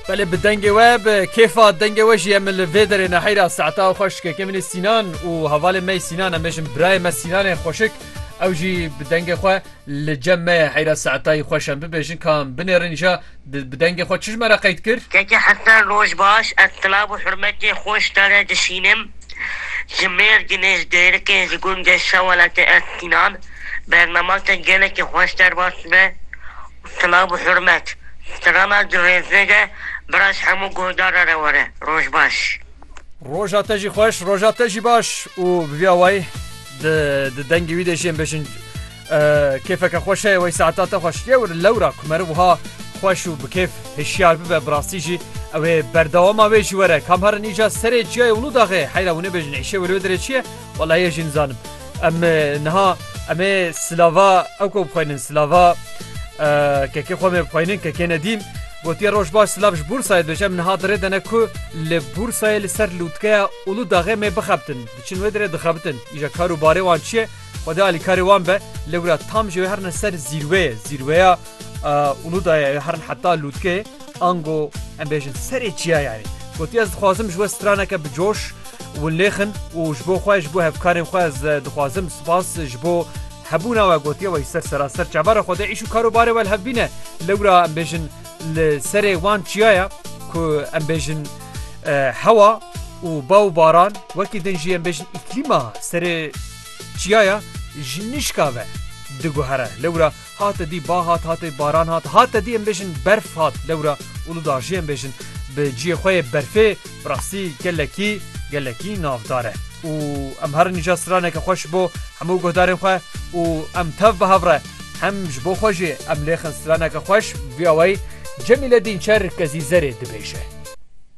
Belê bi dengê we bi kêfa dengê we jî em li vê derê neheyra saeta xweş dikeke min ê Sînan û hevalê me Sînan em bêjin birayê me Sînanê xweşik ew jî bi dengê xwe li cem me ye heyra saetayî xweş em bibêjin ka em binêrin îja bi dengê xwe çi ji me re qeyd kir? Keke Hesen roj baş ez silav û hurmetê xwe ji te re dişînim ji Mêrdînê ji dêrikê ji gundê Şeweletê ez Sînan bername te gelekî xweş derbas dibe. Silav û hurmet. Strana di rêzê de bira ji hemû guhdara re were. Roj baş. Roja te jî xweş, roja te jî baş û bi vîya wayî di di dengê wî de jî em bêjin kêfeke xweş heye wey saeta te xweş. Yewr lewra ku meriv wiha xweş û bi kêf hişyar bibe bi rastî jî ew ê berdewama wê jî were. Kam herin îcar serê çiyayê Ulûdaxê heyra hûn ê bêjin êşê wê li wê derê çi ye? Walayi ez jî nizanim. Em niha em ê silava ew ku bixweynin silava kekê xwe mê bixweynin kekê nedîm gotiye roj baş silav ji Bursayê dibêje em niha dirê dene ku li Bursayê li ser lûtkeya Ulu daxê mê bixebtin. Diçin wê dirê dixebitin. Îja kar û barê wan çi ye? Xwedê alîkarê wan be. Lewra tam ji wê herine ser zîrweyê. Zîrweya Uludaya ya herin heta lûtkê, ango em bêjin serê çiyaya ye. Gotiye ez dixwazim ji we straneke bi coş winlêxin û ji bo xwe ji bo hevkarên xwe ez dixwazim spas ji bo hebûna we gotiye wê ji ser seraser çavara xwe de îş û karobarê we li hev bîne. Lewra em bêjin li serê wan çiyaya ku em bêjin hewa û ba û baran wekî din jî em bêjin îklîma serê çiyaya ji nişka ve diguhere. Lewra Hate dî ba hat, hate baran hat, hate dî em bêjin berf hat. Lewra Uludağ jî em bêjin bi ciyê xwe yê berfê bi rastî gelekî gelekî navdar e û em herin îcar straneke xwe ji bo hemû guhdarên xwe û em tev bi hev re hem ji bo xwe jî em lêxin straneke xweş via wey Cemîle Dînçer Kezîzerê dibêje.